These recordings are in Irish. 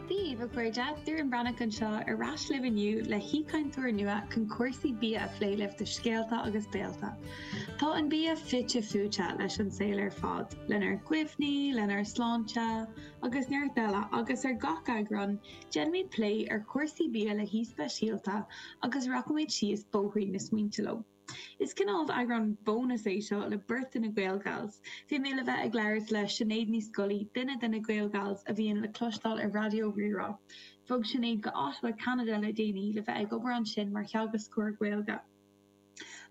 Daoibh, a chairde, Doireann Breathnach anseo ar ais libh inniu le haoichainteoir nua chun cúrsaí bia a phlé libh do scéalta agus béilte. Tá an bia fite fuaite leis an saol ar fad, lenár gcuimhní, lenár sláinte, agus neart eile, agus ar gach eagrán, déanfaimid plé ar chúrsaí bia le haoi speisialta agus rachaimid síos bóithrín na smaointe leo. Is cineál eagrán bonus é seo le beirt de na GaelGals. Bhí mé le bheith ag labhairt le Sinéad Ní Scolaí, duine de na GaelGals a bhíonn le cloisteáil ar Raidió Rí-Rá. Bhog Sinéad go Ottawa, Ceanada le déanaí le bheith ag obair ansin mar theagascóir Gaeilge.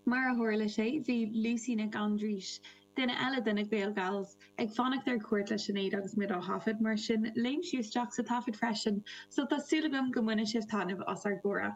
Mar a tharla sé bhí Lucy Nic Aindrís, duine eile de na GaelGals, ag fanacht ar cuairt le Sinéad agus muid á thaifead, mar sin léim sí isteach sa taifead freisin, so tá súil agam go mbainfidh sibh taitneamh as ár gcomhrá.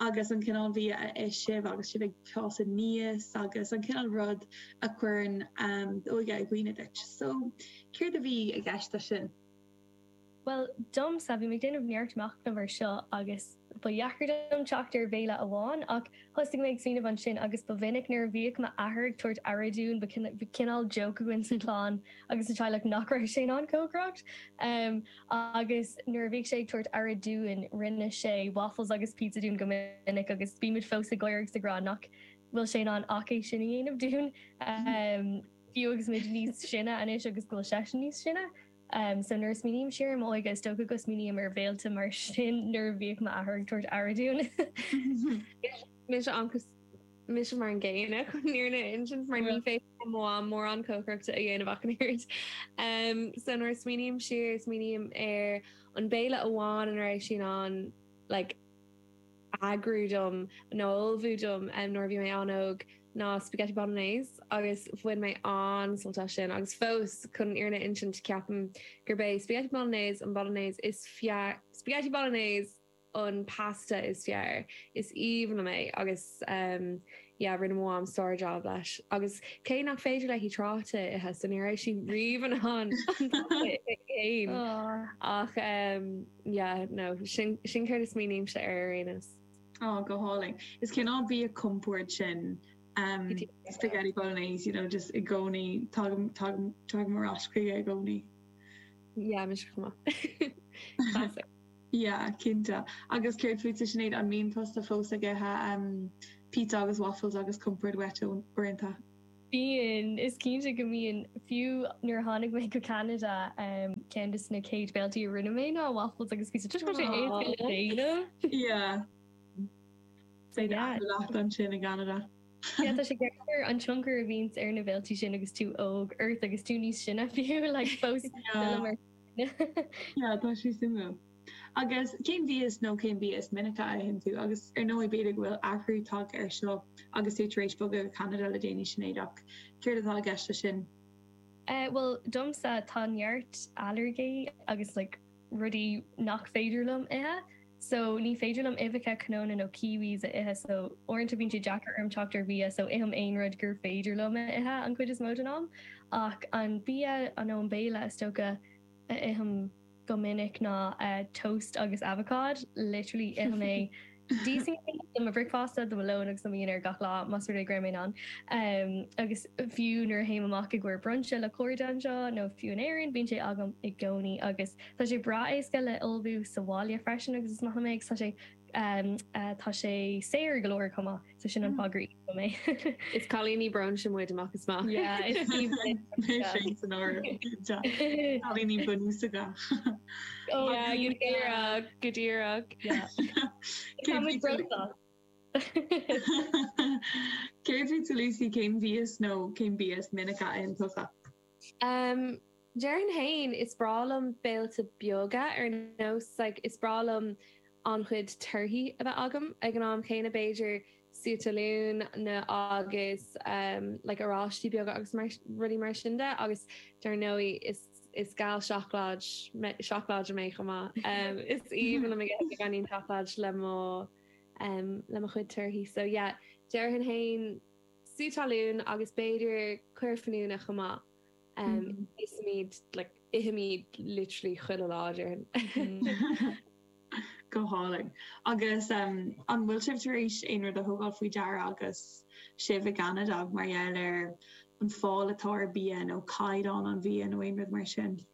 agus an cineál bhia a ith sibh agus sibh ag fás aníos agus an cineál rud a chuireann d'óige i gcuimhne duit. So, céard a bhí i gceist leis sin? Bhuel, domsa, bhí mé ag déanamh neart machnaimh ar seo agus ba dheacair dom teacht ar bhéile amháin ach thosaigh mé ag smaoineamh ansin agus ba mhinic nuair a bhíodh m'athair ag tabhairt aire dúinn ba chineál joke againn sa chlann agus sa teaghlach nach raibh sé in ann cócaireacht. Agus nuair a bhíodh sé ag tabhairt aire dúinn rinne sé waffles agus pizza dúinn go minic agus bímid fós ag gáire agus ag rá nach bhfuil sé in ann ach é sin a dhéanamh dúinn fiú agus muid níos sine anois agus go bhfuil seisean níos sine. So nuair a smaoiním siar ar m'óige is dócha go smaoiním ar bhéilte mar sin nuair a bhíodh m'athair ag tabhairt aire dúinn. Mise mar an gcéanna chun an fhírinne a insint mar ní féidir. le mo mham mórán cócaireachta a dhéanamh ach an oiread. So nuair a smaoiním siar, smaoiním ar an béile amháin a raibh sí in ann like eagrú dom nó a ullmhú dom nuair a bhí mé an-óg ná spaghetti bolognese agus bhain mé an-sult as sin agus fós chun an fhírinne a insint ceapaim gurb é spaghetti bolognese an bolognese is fearr spaghetti bolognese! an pasta is fearr. Is aoibhinn liom é agus ehm yeah rinne mo mham sár job leis. Agus cé nach féidir léi trátaí a ithe so ní raibh sí riamh in ann an pasta a ithe féin. Ach ehm yeah no sin sin céard a smaoinímse air ar aon nós. Aw go hálainn. Is cineál bia compord sin ehm spaghetti bolognese you know just i gcónaí tagaim tagaim tagaim ar ais chuige i gcónaí. Yeah mise chomh maith. Classic. Yeah, cinnte. Agus céard fútsa Sinéad, an mbíonn tusa fós ag ithe pizza agus waffles agus compord uait uaireanta? Bíonn, is cinnte go mbíonn. Fiú nuair a tháinig mé go Ceanada, ceann de na céad béiltí a rinne mé ná waffles agus pizza, toisc go raibh sé éasca le déanamh. Yeah. Beidh dada leat ansin i gCeanada. Yeah, tá sé deacair an tionchar a bhíonns ar na béiltí sin agus tú óg ort agus tú níos sine fiú, like fós. Yeah. Yeah, tá sé suimiúil. Agus cén bia is nó cén bia is minice a itheann tú agus ar ndóigh b'fhéidir go bhfuil athrú tagtha air seo agus tú tar éis bogadh go Ceanada le déanaí, Sinéad, ach céard atá i gceist leis sin? Eh, bhuel, domsa tá neart ailléirgí agus like rudaí nach féidir liom ithe. so ní féidir liom uibheacha cnónna nó kiwis a ithe so uaireanta bíonn sé deacair orm teacht ar bhia so ithim aon rud gur féidir liom a ithe an chuid is mó den am ach an bia nó an béile is dócha a ithim go minic ná toast agus avocád literally ithim é sin do mo bhricfeasta do mo lón agus do mo dhinnéar gach lá más rud é go raibh mé in ann em agus fiú nuair a théim amach i gcomhair brunch le cairde anseo nó fiú in Éirinn bíonn sé agam i gcónaí agus Tá sé breá éasca le ullmhú sa bhaile freisin agus is maith liom é agus tá sé saor go leor chomh maith so sin an fáth gur íosfaidh mé. Is cailíní brunch muid amach is amach. Yeah is Sin san áireamh cailíní bunúsacha. Oh yeah go díreach go díreach. Tá muid brunch. Céard fútsa Lucy cén bia is nó cén bia is minice a itheann tusa? Em, déarfainn fhéin, is breá liom béilte beaga, ar nós, like, is breá liom an-chuid torthaí a bheith agam, ag an am chéanna, b'fhéidir sú talún nó agus, em, like, oráistí beaga agus mar, rudaí mar sin de agus dar ndóigh is, is gal seacláid mé, seacláide mé chomh maith. Em, is aoibhinn liom a bheith ag dinnéar seacláid le mo, em, le mo chuid torthaí. So yeah, déarfainn fhéin. sú talún agus b'fhéidir caora fíniúna chomh maith. Ithimíd like ithimíd literally chuile lá déarfainn. Go hálainn. Agus an bhfuil sibh tar éis aon rud a thógáil faoi deara agus sibh i gCeanada mar gheall ar an fáil atá ar bia nó caighdeán an bhia nó aon rud mar sin?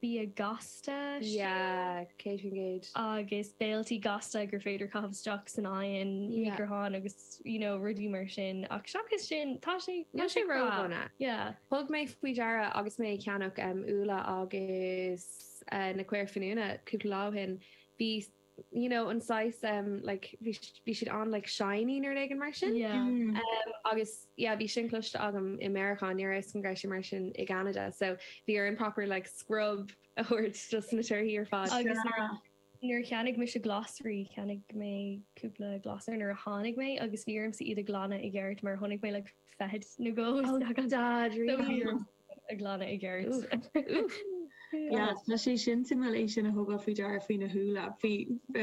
bia gasta, sea, 100%. agus béilte gasta gur féidir caitheamh isteach san oigheann, micreathonn agus you know rudaí mar sin ach seachas sin tá sé, níl sé ró-dhona. Yeah. Thug mé faoi deara agus mé ag ceannach úlla agus na caora fíniúna cúpla lá ó shin, bhí. you know an saghas em like bhí bhí siad an like shiny nó rud éigin mar sin. Yeah. Em agus yeah bhí sin cloiste agam i Meiriceá ní raibh a fhios agam go raibh sé mar sin i gCeanada so bhí orainn proper like scrub a thabhairt dos na torthaí ar fad. Agus nuair nuair a cheannaigh mise glasraí cheannaigh mé cúpla glasra nuair a tháinig mé agus bhí ormsa iad a ghlanadh i gceart mar chonaic mé like feithid nó dhó istigh ann. Oh God really? Ag glanadh i gceart. Yes, tá sé sin suimiúil é sin a thógáil faoi deara faoi na húlla, bhí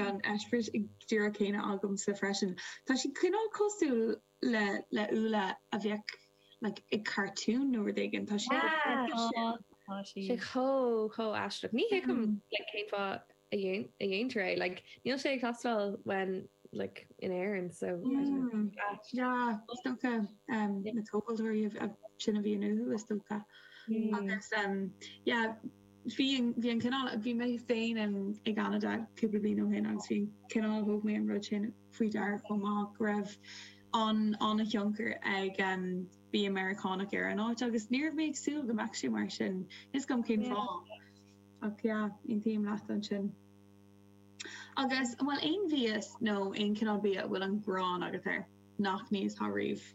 an eispéireas díreach céanna agamsa freisin. Tá sé cineál cosúil le le úlla a bheadh like ag cartoon nó rud éigin, tá siad chomh Yeah, tá, tá siad chomh chomh aisteach. Ní thuigim like cén fáth a dhéantar é like níl sé ag teastáil when like in Éirinn so I don't know where he's at. Sea, is dócha na tomhaltóirí sin a bhíonn uathu is dócha agus yeah bhí an cineál, bhí mé féin i gCeanada cúpla bliain ó shin agus bhí an cineál thóg mé an rud sin faoi deara chomh maith go raibh an an a thionchar ag mbia Meiriceánach ar an áit agus ní raibh mé ag súil go mbeadh sé mar sin. Níl fhios agam cén fáth. Ach yeah, aontaím leat ansin. Agus an bhfuil aon mhias nó aon cineál bia a bhfuil an ghráin agat air nach n-íosfá riamh?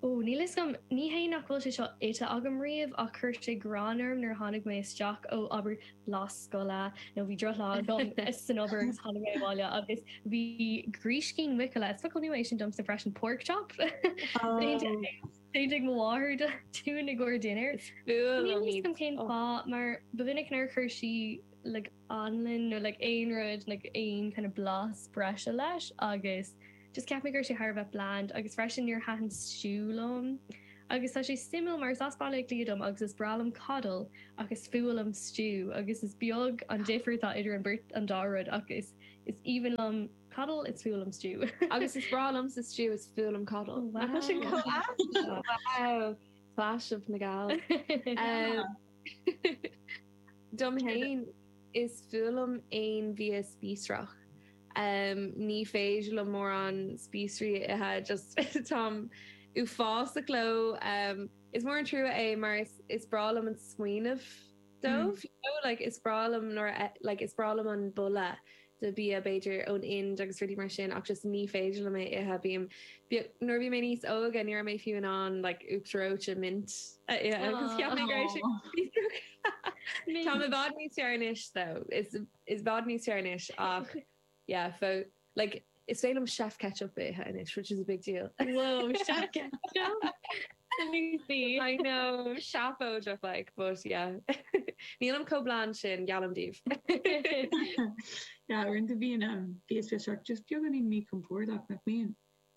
Ó, níl fhios agam. Ní hé nach bhfuil sé seo ite agam riamh ach chuir sé gráin orm nuair a tháinig mé isteach ó, abair, lá scoile nó bhí drochlá agam san obair agus tháinig mé abhaile agus bhí gríscín muiceola, is focal nua é sin domsa freisin, pork chop? Ó! Déanta ag mo mháthair dúinn i gcóir dinnéir. N'fheadar cén fáth mar ba mhinic nár chuir sí aon anlann nó aon rud nó aon kind of blas breise leis agus just cheap mé go raibh sé thar a bheith bland agus freisin níor thaitin stew liom. Agus tá sé suimiúil mar is as Baile Átha Cliath dom agus is breá liom coddle ach is fuath liom stew agus is beag an difear atá idir an beirt an dá rud ach is is aoibhinn liom Coddle is fuath liom stew. Agus is breá liomsa stew is fuath liom coddle. Wow. Tá sin comh aitheanta. Wow. Clash na nGael. Dom fhéin is fuath liom aon bhia spíosrach. Ní féidir liom mórán spíosraí a ithe just táim uafásach leo. Is mór an trua é mar is is breá liom an smaoineamh. dóibh you know like is breá liom nuair a like is breá liom an boladh de bia b'fhéidir ón Ind agus rudaí mar sin ach just ní féidir liom é ithe bím like nuair a bhí mé níos óige ní raibh mé fiú in ann like uachtar reoite mint a ithe agus cheap mé go raibh sé Tá mé i bhfad níos fearr anois though is i bhfad níos fearr anois ach Yeah fadó. Like is féidir liom chef ketchup a ithe anois which is a big deal. Wow chef ketchup na lúsaí. I know seafóideach like but yeah nílim chomh bland sin geallaim daoibh. Yeah uaireanta bíonn bia spíosrach just beagáinín míchompordach nach mbíonn?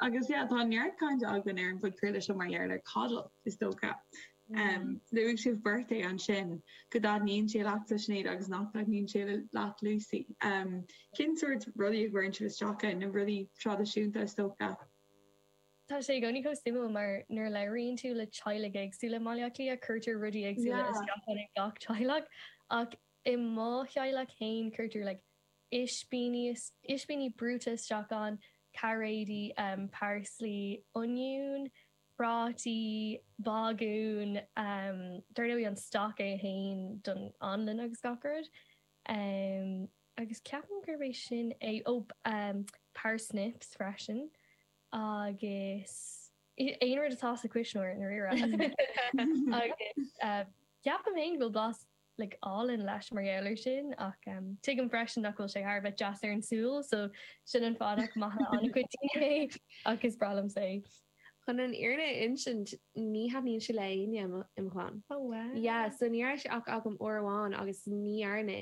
Agus yeah, tá neart cainte againn ar an phodchraoladh seo mar gheall ar Coddle, is dócha. Luaigh sibh beirt é ansin, go dtaitníonn sé leat a Shinéad agus nach dtaitníonn sé leat Lucy. Cén sórt rudaí a chuireann sibh isteach ann? Na rudaí traidisiúnta, is dócha. Tá sé i gcónaí chomh suimiúil mar nuair a labhraíonn tú le teaghlaigh éagsúla i mBaile Átha Cliath, cuirtear rudaí éagsúla isteach ann ag gach teaghlach. Ach i mo theaghlach féin cuirtear like is-, ispíní brúite isteach ann, cairéidí, parsley, oinniún, prátaí, bágún, dar ndóigh an stock é fhéin don anlann agus gach rud agus ceapaim gurb é sin é, ó parsnips freisin agus aon rud atá sa cuisneoir i ndáiríre agus ceapaim fhéin go bhfuil blas like álainn leis mar gheall ar sin ach em tuigim freisin nach bhfuil sé thar a bheith deas ar an súil so sin an fáth nach maith le an-chuid daoine é ach is breá liomsa é. Chun an fhírinne a insint ní thaitníonn sé le éinne im' chlann. Oh wow. Yeah so ní raibh sé ach agam uair amháin agus ní dhearna,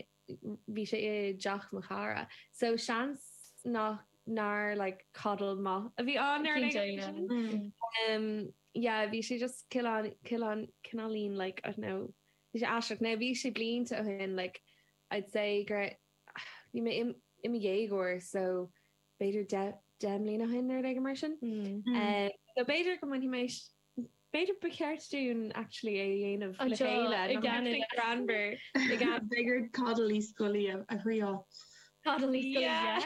bhí sé i dteach mo chara so seans nach, nár like coddle maith a bhí ann Cinnte yeah. Em yeah bhí sé just cineál, cineáilín like I don't know, Aisteach, now bhí sé blianta ó shin, like I'd say go raibh, bhí mé i mo dhéagóir so b'fhéidir deich, deich mbliana ó shin nó rud éigin mar sin. So b'fhéidir go mbainfidh mé, b'fhéidir ba cheart dúinn actually é a dhéanamh le chéile i gCeanada, Granber i gCeanada. B'fhéidir Coddle Uí Scolaí a thriáil. Coddle Uí Scolaí, yeah!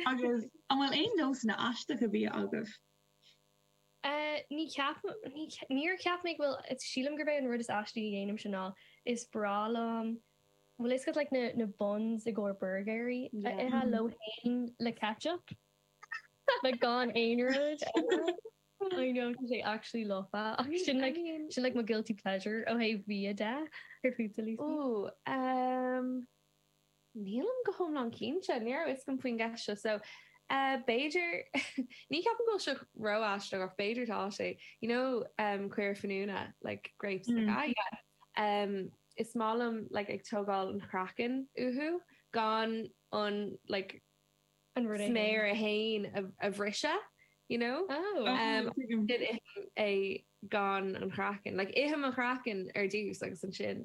Agus an bhfuil aon nósanna aisteacha bia agaibh? Ní cheapaim, ní, níor cheap mé go bhfuil, sílim gurb é an rud is aistí a dhéanaimse ná is breá liom, bhfuil a fhios agat like na, na buns i gcomhair burgairí a ithe leo fhéin le ketchup like gan aon rud eile I know tá sé actually lofa ach sin like, sin like mo guilty pleasure ó thaobh bia de ar Food Sillies. Ooh, um. Nílim go hiomlán cinnte. Ní raibh fhios agam faoin gceist seo so b'fhéidir ní cheapaim go bhfuil seo ró-aisteach ach b'fhéidir tá sé. You know caora fíniúna like grapes yeah is maith liom like ag tógáil an chraicinn uathu gan an like an rud é féin sméar é féin a bhriseadh you know oh ithim é gan an chraicinn like ithim an chraicinn ar dtús agus ansin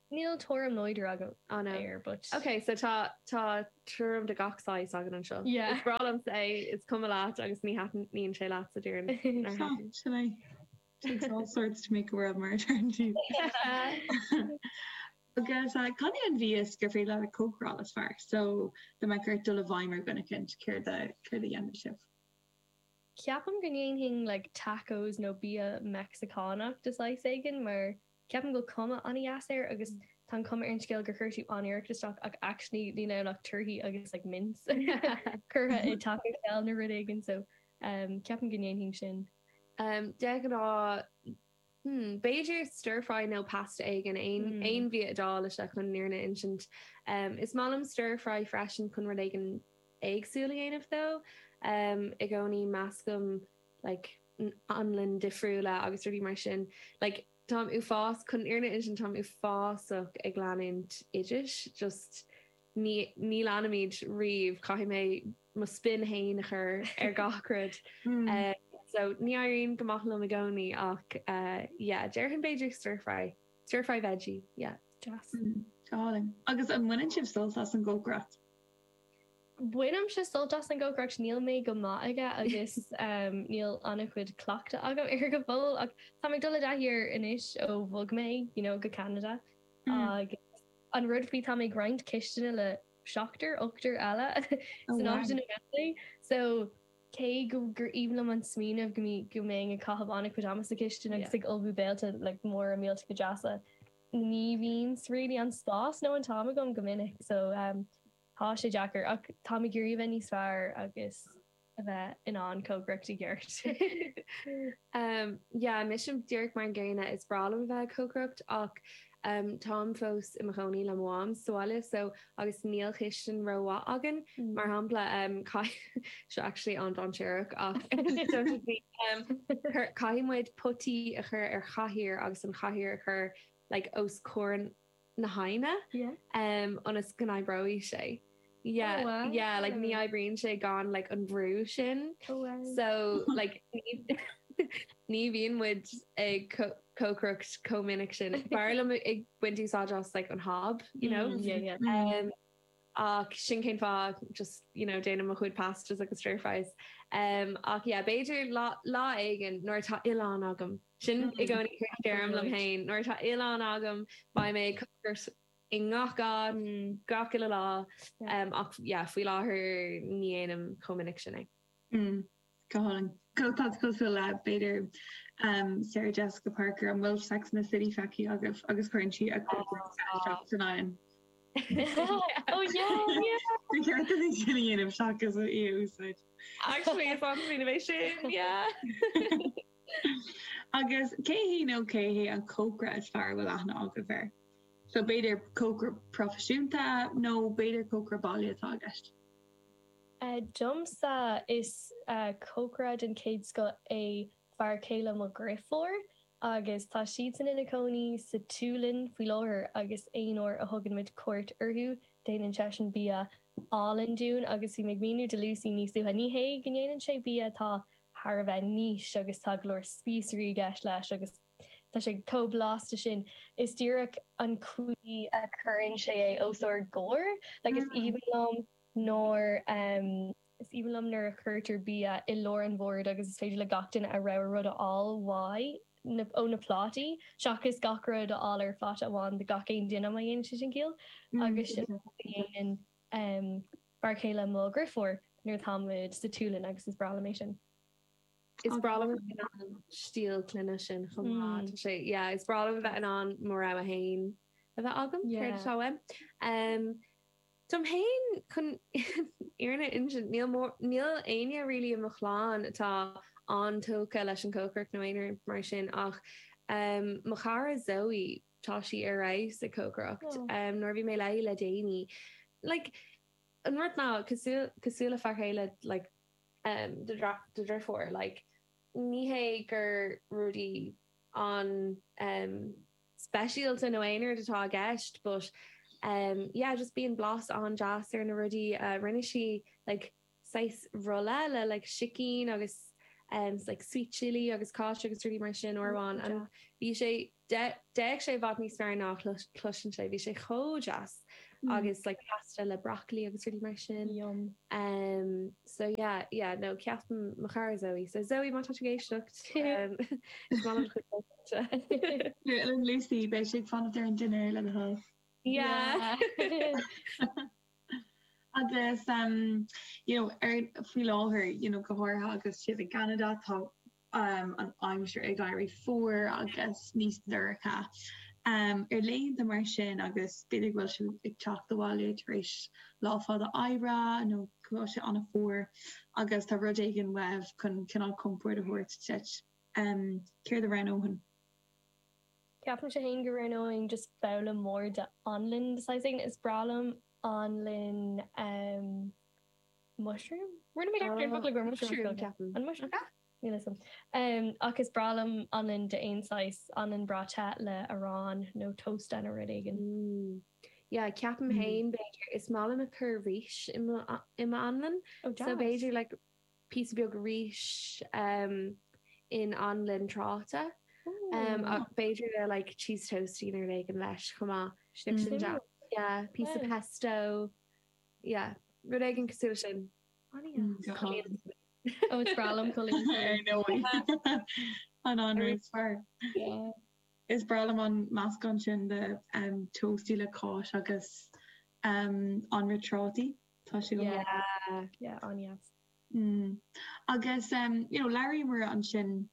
Níl tuairim láidir agam air but. Ok so tá tá tuairim de gach saghas againn anseo. Yeah. Is breá liomsa é, is cuma leat agus ní thaitníonn sé leat sa deireadh, nár thaitin? Sin é. Takes all sorts to make a world mar a deireann siad. Agus cad é an bia gur féidir leat a chócaráil is fearr? So dá mbeadh ort dul i bhfeidhm ar dhuine eicínt, céard a céard a dhéanfadh sibh? Ceapaim go ndéanfainn like tacos nó bia Meicsicánach de shaghas éigin mar Ceapaim go bhfuil cuma an-dheas air agus tá an cuma ar an scéal gur chuir tú an-iarracht isteach ach actually níl ann ach torthaí agus like mince curtha i Taco Shell nó rud éigin so ceapaim go ndéanfainn sin. De ghnáth hmm b'fhéidir stir fry nó pasta éigin, aon aon bhia Iodáilise chun an fhírinne a insint. Is maith liom stir fry freisin chun rud éigin éagsúil a dhéanamh though i gcónaí meascaim like Anlainn difriúla agus rudaí mar sin. Like táim uafás, chun an fhírinne a insint táim uafásach ag leanúint oidis. Just ní, ní leanaim iad riamh, caithfidh mé mo spin fhéin a chur ar gach rud. Eh, so ní éiríonn go maith liom i gcónaí ach eh, yeah, déarfainn b'fhéidir stir fry. Stir fry veggie, yeah, deas. Álainn. Agus an mbaineann sibh sult as an gcócaireacht? Bainimse sult as an gcócaireacht, níl mé go maith aige agus níl an-chuid cleachtadh agam air go fóill ach táim ag dul i dtaithí air anois ó bhog mé you know go Ceanada agus an rud faoi táim ag roinnt cistine le seachtar, ochtar eile san áit ina bhfuil mé so cé go gur aoibhinn liom an smaoineamh go mbeinn ag caitheamh an-chuid ama sa chistin agus ag ullmhú béilte like móra mílte go deasa. ní bhíonns really an spás nó an t-am agam go minic so tá sé deacair ach táim ag iarraidh a bheith níos fearr agus a bheith in ann cócaireacht i gceart. Yeah mise díreach mar an gcéanna is breá liom a bheith ag cócaireacht ach táim fós i mo chónaí le mo mham sa bhaile so agus níl cistin ró-mhaith againn, mar shampla, caithfidh, seo actually an-dainséarach ach don't at me, caithfidh muid potaí a chur ar chathaoir agus an chathaoir a chur like os comhair na hoighne em ionas go n-oibreoidh sé. Yeah, yeah like ní oibríonn sé gan like an brú sin so like ní bhíonn muid ag cócaireacht chomh minic sin. B'fhearr liom ag baint úsáid as like an hob, you know? Mm, yeah, yeah. Um, ach sin cén fáth, just, you know, déanaim mo chuid pastas agus stir fries. Um, ach yeah, b'fhéidir lá, lá éigin nuair atá oileán agam, sin i gcónaí a deirim liom féin, nuair atá oileán agam, beidh mé ag cócaireacht i ngach áit, Mm, gach uile lá. yeah. Um, ach yeah, faoi láthair ní dhéanaim chomh minic sin é. Mm, Scáileán go tá tú cosúil le, b'fhéidir. Sarah Jessica Parker, an bhfuil Sex and the City feicthe agaibh? Agus cuireann sí a cuid gruaige isteach san oigheann. Oh yeah, yeah. Bhí ceart a bhí sin a dhéanamh seachas í a úsáid. Actually, is on bhí mé sin, yeah. Agus cé hí nó cé hé an cócaire is fearr a bhfuil aithne agaibh air. So b'fhéidir cócaire proifisiúnta nó b'fhéidir cócaire baile atá i gceist. Domsa, is cócaire den chéad scoth é fear céile mo dhriofúr agus tá siadsan ina gcónaí sa tSualainn faoi láthair agus aon uair a thugann muid cuairt orthu déanann seisean bia álainn dúinn agus bhí mé ag míniú do Lucy níos luaithe, ní hé go ndéanann sé bia atá thar a bheith nice agus tá go leor spíosraí i gceist leis agus tá sé chomh blasta sin, is díreach an chaoi a chuireann sé é os ár gcomhair, like is aoibhinn liom Nor is aoibhinn liom nuair a chuirtear bia i lár an bhoird agus is féidir le gach duine a rogha rud a fháil uaidh nó ó na plátaí, seachas gach rud a fháil ar phláta amháin do gach aon duine, má dhéanann sé sin ciall. Agus sin an rud a dhéanann fear céile mo dhriofúr nuair atáimid sa tSualainn agus is breá liom é sin. Is breá liom a bheith in ann stíl clainne sin chomh maith. Tá sé, yeah, is breá liom a bheith in ann mo rogha fhéin a bheith agam, céard atá uaim. Dom fhéin, chun fhírinne a insint, níl éinne really i mo chlann atá an-tógtha leis an chócaireacht nó aon rud mar sin ach mo chara Zoe, tá sí ar fheabhas ag cócaireacht. Nuair a bhí mé léi le déanaí, like an rud ná cosúil le fear céile do dhriofúr, like ní hé gur rudaí an. speisialta nó aon rud atá i gceist but yeah just bíonn blas an-deas ar na rudaí a rinne sí like saghas rolla le like sicín agus like sweet chilli agus cáis agus rudaí mar sin ann and bhí sé d'fhéach sé i bhfad níos fearr ná chloiseann sé bhí sé chomh deas agus like pasta le broccoli agus rudaí mar sin yum um so yeah yeah no ceapaim mo chara Zoe so Zoe má tá tú ag éisteacht um is maith liom do chuid Deir Eoin Lucy beidh sé ag fanacht ar an dinnéar le do thoil. Yeah. Agus um you know ar faoi láthair you know go háirithe agus sibh i gCeanada tá um an aimsir ag éirí fuar agus níos dorcha um ar laethanta mar sin agus b'fhéidir go bhfuil sibh ag teacht abhaile tar éis lá fada oibre nó go bhfuil sé ana fuar agus tá rud éigin uaibh chun cineál compord a thabhairt duit. Um céard a roghnóinn? Ceapaimse fhéin go roghnóinn just babhla mór de anlann de saghas éigin. Is breá liom anlann um mushroom? Rinne mé ceapaim focla gur mushroom a ceapaim. An mushroom? Níl fhios a'm. Um ach is breá liom anlann de aon saghas, anlann breá te le arán nó tosta nó rud éigin. Mm yeah ceapaim fhéin b'fhéidir. Is maith liom ag cur rís i m'anlann. Oh deas. So b'fhéidir like. píosa beag rís in anlann trátaí ach b'fhéidir le like cheese toastie nó rud éigin leis chomh maith. Sin sin deas. Yeah piece of pesto yeah rud éigin cosúil le sin. Oh is breá liom coilín. An anraith is fearr. Is breá liom an meascán sin de toastie le cáis agus anraith trátaí. Tá sé go maith. Yeah, yeah, an-dheas. Mm. Agus, em, you know, labhraíomar ansin,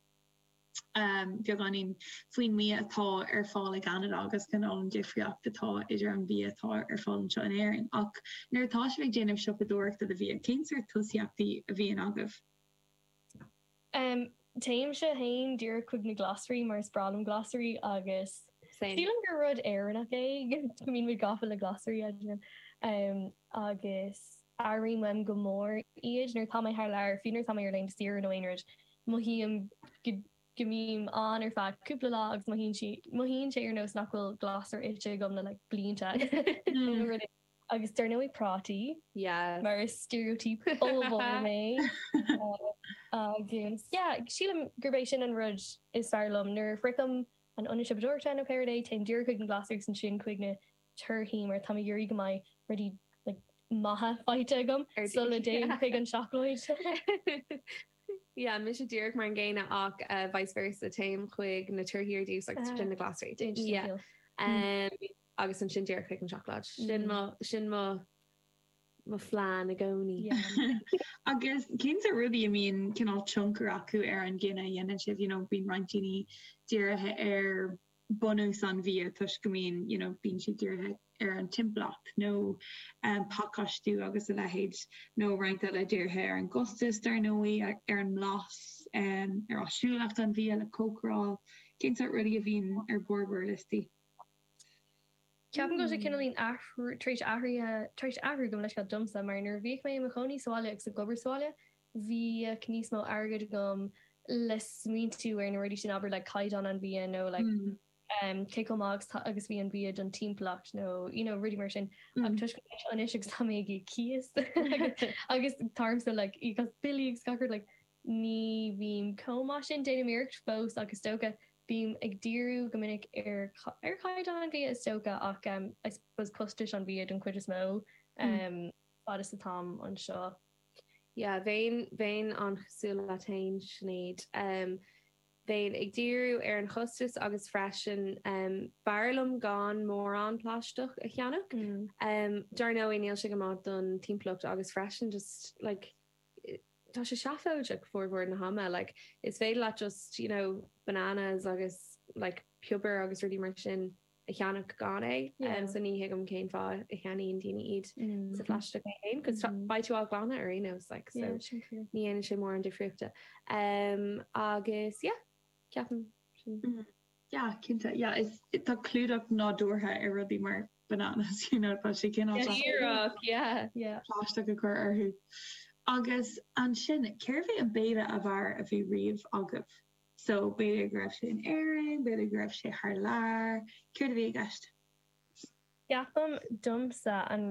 em, beagáinín faoin mbia atá ar fáil i gCeanada agus faoin difríocht atá idir an bia atá ar fáil anseo in Éirinn. Ach nuair atá sibh ag déanamh siopadóireachta do bhia, cén sórt tosaíochtaí a bhíonn agaibh? Téimse féin díreach chuig na glasraí mar is breá liom glasraí agus sílim gur rud Éireannach é go mbímid gafa le glasraí agus airím uaim go mór iad nuair atá mé thar lear, fiú nuair atá mé ar laethanta saoire nó aon rud, mothaím go mbím ann ar feadh cúpla lá agus mothaíonn sé ar nós nach bhfuil glasra ite agam le blianta nó rud éigin. Agus dar ndóigh prátaí. Yeah, mar is stereotype ollmhór mé. Agus yeah, sílim gurb é sin an rud is fearr liom, nuair a shroichim an ionad siopadóireachta nó céard é, téim díreach chuig na glasraí agus ansin chuig na torthaí mar táim ag iarraidh go mbeidh rudaí like maithe faighte agam sula dtéim chuig an seacláid. Yeah, mise díreach mar an gcéanna ach vice versa, téim chuig na torthaí ar dtús agus ansin na glasraí. Yeah. agus ansin díreach chuig an seacláid. Sin mo, sin mo, mo phlean i gcónaí. Agus cén sórt rudaí a mbíonn cineál tionchar acu ar an gcinneadh a dhéanann sibh, you know, bíonn roinnt daoine dírithe ar bunús an bhia toisc go mbíonn, you know, bíonn siad dírithe ar an timpeallacht nó um, pacáistiú agus a leithéid nó roinnt eile dírithe ar an gcostas dar ndóigh, ar, ar an mblas, um, ar áisiúlacht an bhia le cócaráil, cén sórt rudaí a bhíonn ar bharr bhur liostaí. Ceapaim go bhfuil sé cineáilín athrú, tar éis athraithe, tar éis athrú go mór le scaitheamh domsa mar nuair a bhíodh mé i mo chónaí sa bhaile agus ag obair sa bhaile, bhíodh níos mó airgid agam le smaointiú ar na rudaí sin, abair like caighdeán an bhia nó like em cé chomh maith agus agus a bhí an bia don timpeallacht nó you know rudaí mar sin ach toisc go bhfuil mé anseo anois agus tá mé ag íoc cíos agus táimse like ag íoc as billí agus gach rud like Ní bhím chomh maith sin, déanaim iarracht fós ach is dócha, bím ag díriú go minic ar, ar chaighdeán an bhia is dócha ach em I suppose costas an bhia don chuid is mó em fad is atáim anseo. Yeah bheinn, bheinn an-chosúil leat fhéin Sinéad, em bheinn ag díriú ar an chostas agus freisin em b'fhearr liom gan mórán plaisteach a cheannach. Em mar dar ndóigh níl sé go maith don timpeallacht agus freisin just like, Tá sé seafóideach formhór na hama. Like is féidir leat just you know bananas agus like piobair agus rudaí mar sin a cheannach gan é. Yeah. So ní thuigim cén fáth a cheannaíonn daoine iad sa phlaisteach é féin cos beidh tú á nglanadh ar aon nós like so. Yeah, sin fíor. Ní dhéanann sé mórán difríochta. Umm agus yeah ceapaim sin. Yeah cinnte yeah is tá clúdach nádúrtha ar rudaí mar bananas you know tá sé cineál ironic yeah yeah. plaisteach a chur orthu. Agus ansin cérbh é an béile ab fhearr a bhí riamh agaibh? So b'fhéidir go raibh sé in Éirinn, b'fhéidir go raibh sé thar lear, céard a bhí i gceist? Ceapaim domsa an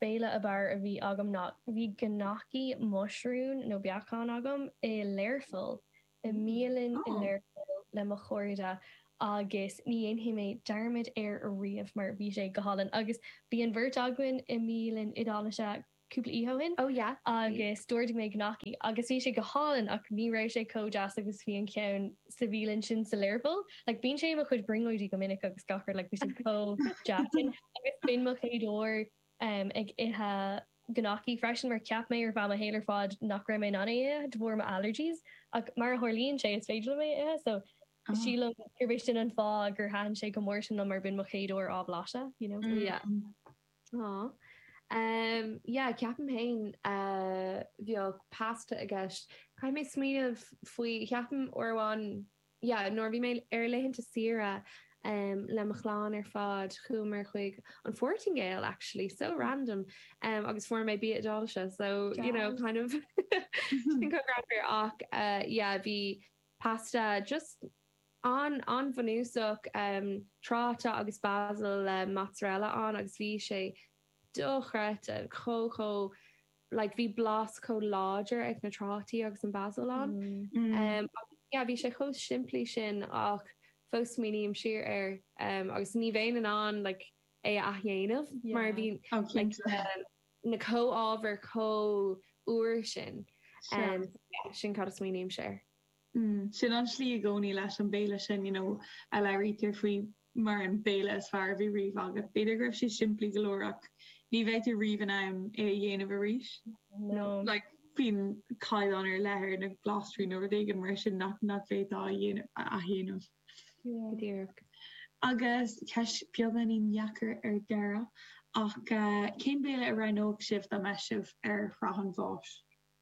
béile ab fhearr a bhí agam ná bhí gnocchi muisiriún nó beacán agam i Learpholl i mbialann i Learpholl le mo chairde agus ní dhéanfaidh mé dearmad air ariamh mar bhí sé go hálainn agus bhí an bheirt againn i mbialann Iodálach cúpla oíche ó shin oh yeah agus d'ordaigh mé gnocchi agus bhí sé go hálainn ach ní raibh sé chomh deas agus a bhí an ceann sa bhialann sin sa Learpholl like bíonn sé i mo chuid brionglóidí go minic agus gach rud like bhí sé chomh deas sin agus b'in mo chéad uair em, ag ithe gnocchi freisin mar cheap mé ar feadh mo shaol ar fad nach raibh mé in ann é a ithe de bharr mo allergies ach mar a tharlaíonn sé is féidir liom é a ithe so Ah. sílim gurb é sin an fáth gur thaitin sé chomh mór sin liom mar b'in mo chéad uair á bhlaiseadh you know. Yeah. Mm. Aww. Em, yeah, ceapaim féin eh bheadh pasta i gceist. Caithfidh mé smaoineamh faoi, ceapaim uair amháin, yeah nuair a bhí mé ar laethanta saoire ehm le mo chlann ar fad chuamar chuig an Phortaingéil actually so random ehm agus fuair mé bia Iodáilise so you know kind of sin go raibh mé ach eh yeah bhí pasta just an an bhunúsach ehm trátaí agus basil le mozzarella ann agus bhí sé dochreidte chomh chomh like bhí blas chomh láidir ag na trátaí agus an basil ann. Em, ach yeah, bhí sé chomh simplí sin ach fós smaoiním siar air, em, agus ní bheinn in ann like é a athdhéanamh mar bhí yeah. oh, like, na, na comhábhair chomh úr sin. Sure. Em, so yeah, sin cad a smaoinímse air. Mm. Sin an tslí i gcomhnaí leis an béile sin, you know, a labhraítear faoi mar an béile is fearr a bhí riamh agat. B'fhéidir go raibh sé simplí go leor ach ní bheifeá riamh in ann é a dhéanamh arís. No. Like, bíonn caighdeán ar leith ar na glasraí nó rud éigin mar sin nach bhféadfá a dhéanamh, a athdhéanamh. Yeah. Go díreach. Agus ceist beagáinín dheacair ar deireadh ach cén béile a roghnódh sibh dá mbeadh sibh ar shraith an bháis?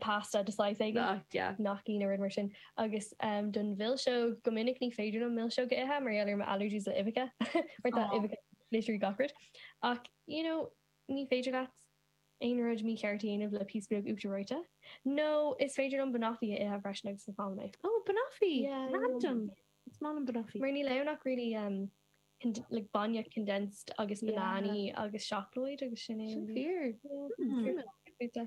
pasta de shaghas éigin. Nach deas. Gnocchi nó rud mar sin. Agus don mhilseog, go minic ní féidir liom milseog a ithe mar gheall ar mo allergies le uibheacha. Mar tá uibheacha i literally gach rud. Ach you know ní féidir leat aon rud mícheart a dhéanamh le píosa beag uachtar reoite. Nó is féidir liom banoffee a ithe freisin agus is aoibhinn liom é. Oh banoffee! Yeah. Random! Is maith liom banoffee. Mar níl ann ach really um like bainne condensed agus bananaí agus seacláid agus sin é. Sin fíor. Hm. Cuma.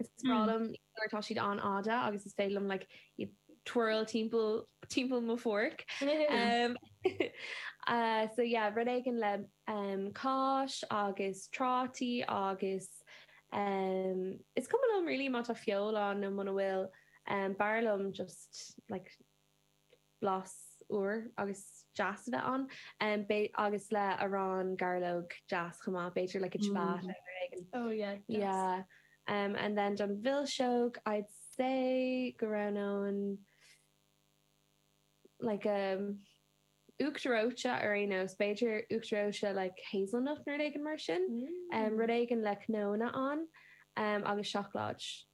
Is breá liom nuair atá siad an-fhada agus is féidir liom like iad twirl timpeall timpeall mo fhorc. So yeah rud éigin le cáis agus trátaí agus is cuma liom really má tá feoil ann nó muna bhfuil b'fhearr liom just like blas úr agus deas a bheith ann. B'fhéidir agus le arán gairleog deas chomh maith b'fhéidir like a ciabatta nó rud éigin. Oh yeah deas. Yeah and then don mhilseog I'd say go roghnóinn like a uachtar reoite ar aon nós b'fhéidir uachtar reoite like hazelnut nó rud éigin mar sin. Rud éigin le cnónna ann agus seacláid.